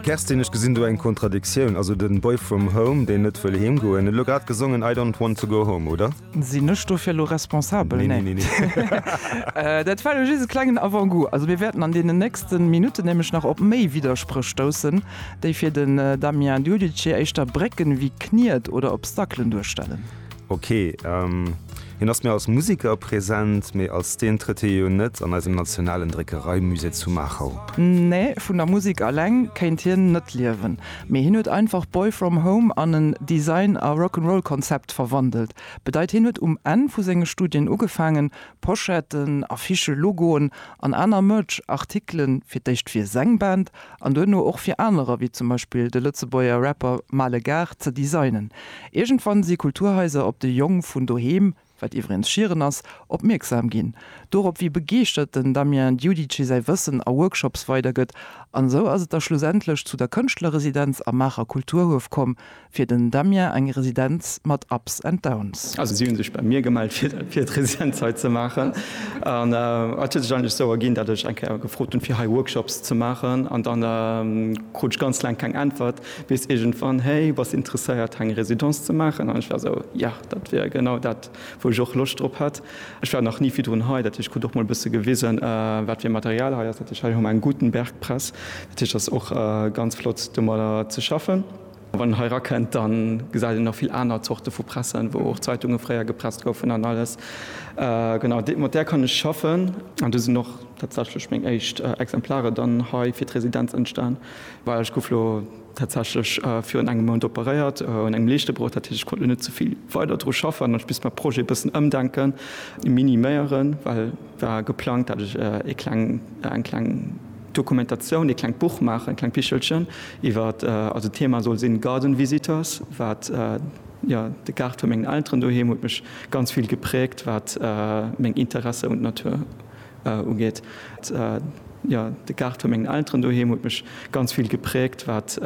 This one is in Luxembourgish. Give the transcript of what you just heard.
Kerstin, ech gesinn do eng Kontradiktioun. Also den Boy from Home, deen net wëll heem goen, huet elo grad gesongen I don't want to go home, oder? Sinn ech dofir elo responsabel? Nee. Dat war elo just e klengen Avant-goût. Also mir wäerten an deenen nächsten Minutten nämlech nach op méi Widderspréch stoussen, déi fir den Damien Giudice éischter Brécken ewéi Kniet oder Obstaclen duerstellen. Ok, hien ass méi als Museker present, mee als deen trëtt hie jo net an eisem nationalen Dréckereimusée zu Maachau. Nee, vun der Musek aleng kéint hien net liewen, mee hien huet einfach Boy From Home an en Design a Rock'n'Roll-Konzept verwandelt. Bedeit hien huet um Enn vu senge Studien ugefaangen, Pochetten, Affichen, Logoen an aner Merch-Artikele fir d'éischt fir seng Band an duerno och fir anerer, wéi zum Beispill de Lëtzebuerger Rapper Maale Gars, ze designen. Iergendwann si Kulturhaiser op de Jong vun doheem, wat iwwregens Schieren ass, opmierksam ginn. Dorop, wéi begeeschtert den Damien Diudice säi Wëssen a Workshops weidergëtt. An esou ass et da schlussendlech zu der Kënschtlerresidenz am Maacher Kulturhuef komm, Fir den Damien eng Residenz mat Ups and Downs. Also si hu sech bei mir gemellt fir d'Residenz hei ze maachen. An et huet sech eigentlech sou erginn, datt ech eng Kéier gefrot hunn, fir hei Workshops ze maachen. An dann krut ech ganz laang keng Äntwert, bis iergendwann, Hey, bass interesséiert hei eng Residence ze maachen? An ech war sou, Ja, dat wier genau dat, wou ech och Loscht drop hätt. Ech war nach ni virdrun hei, dat heescht, ech krut och mol e bësse gewisen, wat fir Material hei ass. Dat heescht, hei hu mer eng Gutenberg-Press, dat heescht, et ass och ganz flott domadder ze schaffen. Wann een hei erakënnt, da gesäit een nach vill aner Zorte vu Pressen, wou och Zeitunge fréier gepresst goufen an alles. Genau, mat där kann ech schaffen. An do sinn och tatsächlech meng éischt Exemplare dann hei fir d'Residenz entstan. Well ech gouf lo tatsächlech virun engem Mount operéiert un engem Leeschtebroch. Dat heescht, ech konnt lo net ze vill weider dru schaffen an ech misst mäi Projet e bëssen ëmdenken, miniméieren, well war geplangt, dat ech e kleng, eng kleng, Dokumentatioun, ee klengt Buch maachen, e klengt Bichelchen iwwer, also d'Thema soll sinn Garden Visitors, wat, jo, de Gaart vu mengen Elteren doheem huet mech ganz vill gepräägt, wat meng Interesse un d'Natur ugeet, jo, de Gaart vu mengen Elteren doheem huet mech ganz vill gepräägt, wat.